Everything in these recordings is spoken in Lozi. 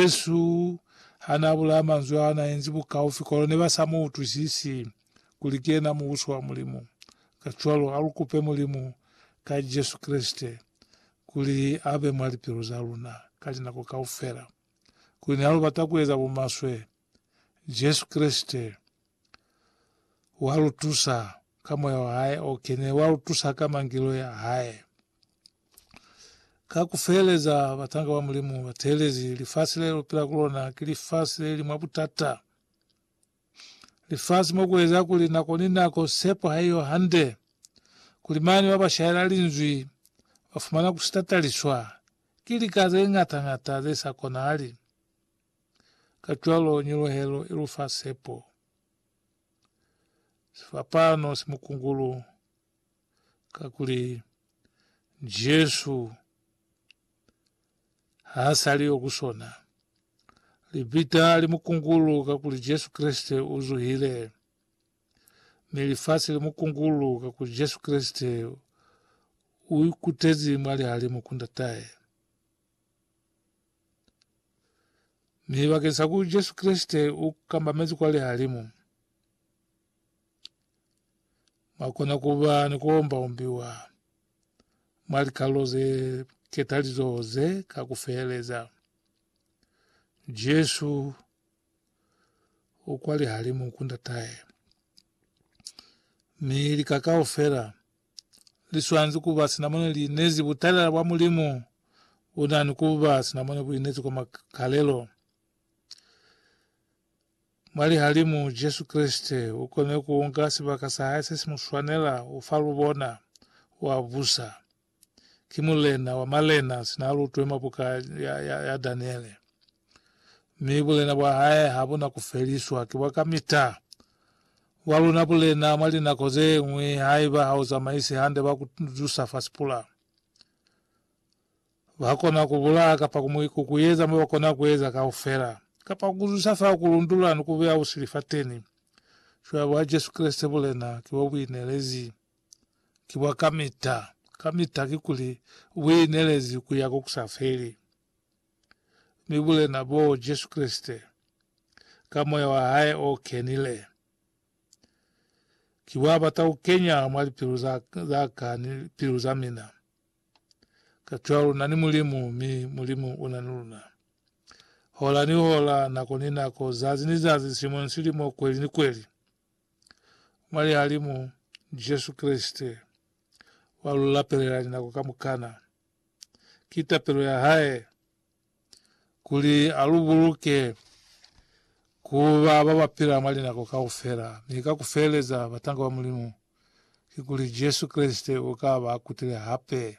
Jesu hanaabulaya manzwi aa naenzi bukaufi kono nebasa muutwisisi kuli kiyena Mubusi wa Mulimu. Kacwalo, alukupe Mulimu ka Jesu Kreste kuli abe mwa lipilu zaluna ka linako kaufela. Kuli nihalubata kueza bumaswe, Jesu Kreste walutusa ka Moya wahae okene, walutusa ka Mangeloi ahae, Ka ku feeleza, batanga ba Mulimu ba teelezi lifasi le lu pila ku lona ki lifasi le li mwa butata, lifasi mo ku eza kuli nako ni nako sepo ha i yo hande, kuli mane ba ba shaela Linzwi ba fumana ku sitataliswa ki lika ze ñata-ñata ze sa konahali. Kacwalo nyuluhelo i lu fa sepo. Sifapano si mukungulu kakuli Jesu ha sali yo kusona. Lipita li mukungulu kakuli Jesu Kreste u zuhile, mi lifasi li mukungulu kakuli Jesu Kreste u ikutezi mwa lihalimu ku Ndatae. Mi bakeng sa ku Jesu Kreste u kambamezi kwa lihalimu, Mwa kona ku ba ni ku omba-ombiwa mwa likalelo ze ketalizoho ze ka ku feheleza. Jesu u kwa lihalimu ku Ndatahe, mi lika kaufela li swanezi ku ba sina mone li inezi butalela bwa Mulimu. U na ni ku ba sina mone bu inezi kwa makalelo. Mwa lihalimu, Jesu Kreste u kone ku unga sibaka sa hae se si mu swanela u fa lubona, u a busa. Ki Mulena wa malena sina a lutwe mwa buka ya, ya, ya Daniele. Mi bulena bwa hae ha bu na ku feliswa, ki bwa kamita. Bwa luna bulena mwa linako ze ñwi haiba ha u zamaisi hande ba ku zusa fa sipula. Ba kona ku bulaya kapa ku mu ikukuyeza mo ba kona ku eza kaufela, kapa ku zwisa fa ku lundula ni ku beya busili fateni. Cwale bwa Jesu Kreste bulena ki bwa buinelezi. Ki bwa kamita, kamita, kikuli, buinelezi ku ya ko ku sa feli. Mi bulena boo, Jesu Kreste, ka Moya wa Hae o kenile, ki bwa bata ku kenya mwa lipilu za, za ka ni lipilu za mina. Kacwalo na ni Mulimu, mi Mulimu una ni luna. Hola ni hola, nako ni nako, zazi ni zazi, silimo ni silimo, kweli ni kweli. Mwa Lihalimu, Jesu Kreste, wa lu lapelela linako kamukana. Ki tapelo ya Hae. kuli a lu buluke ku ba ba ba pila mwa linako kaufela, mi ka ku feleza batanga ba Mulimu, kikuli Jesu Kreste u ka ba kutile hape.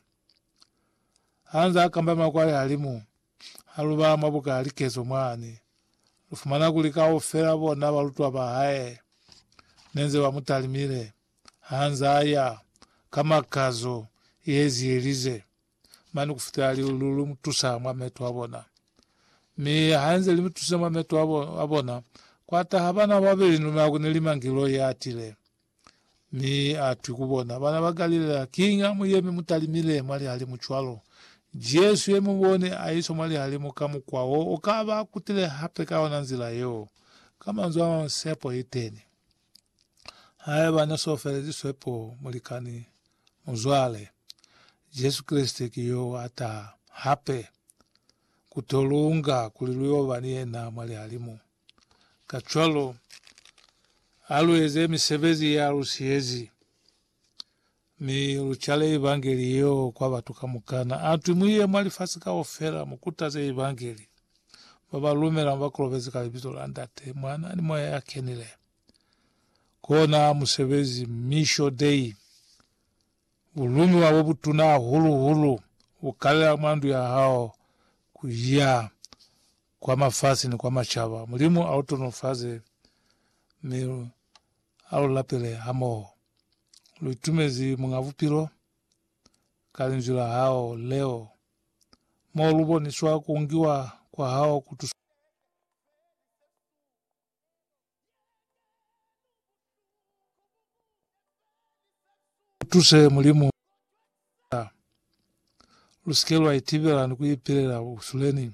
Ha nzaa kamba makwalehalimu, ha lu ba mwa buka ya likezo mwani, lu fumana kuli kaufela bona balutwa ba hae ne nze ba mu talimile ha nzaa ya ka makazo ye zielize mane kufitela li, lu, lu mutusa mwa meto abona. Mi hanze limutusile mwa meto abo, abona, kwataha bana babeli ni luna kune li mangeloi atile. Mi atwi ku bona, Bana ba Galilea, kiñi amuyemi mutalimile mwa lihalimu cwalo? Jesu ye mubone aiswa mwa lihalimu ka mukwa wo, ukaba akutile hape ka yona nzila yeo. Ka manzwi amamwi, sepo iteni. Haiba ne so feleziswe po, mulikani, muzwale, Jesu Kreste ki yo a taha hape ku to lunga kuli lu yo ba ni yena mwa lihalimu. Kacwalo, a lu eze misebezi ya lu siyezi. Mi lu cale Evangeli yeo kwa batu kamukana. A twi, Mu ye mwa lifasi kaufela, mu kutaze Evangeli. Ba ba lumela mu ba kolobeze ka Libizo la Ndate, Mwana, ni Moya ya Kenile. Kona musebezi, Misho Dei, bu lumiwa bo butuna hahulu-hulu, bu kalela mwa ndu ya hao ku ya Kwa mafasi ni kwa macaba, Mulimu a lu tonofaze mi a lu lapele hamoho. Lu itumezi Muñ'a Bupilo ka Linzwi la hao leo, mo lu boniswa ku ngiwa kwa hao ku tusa. Utuse Mulimu ku itusa lusike lwa itibela ni kuipilela busuleni.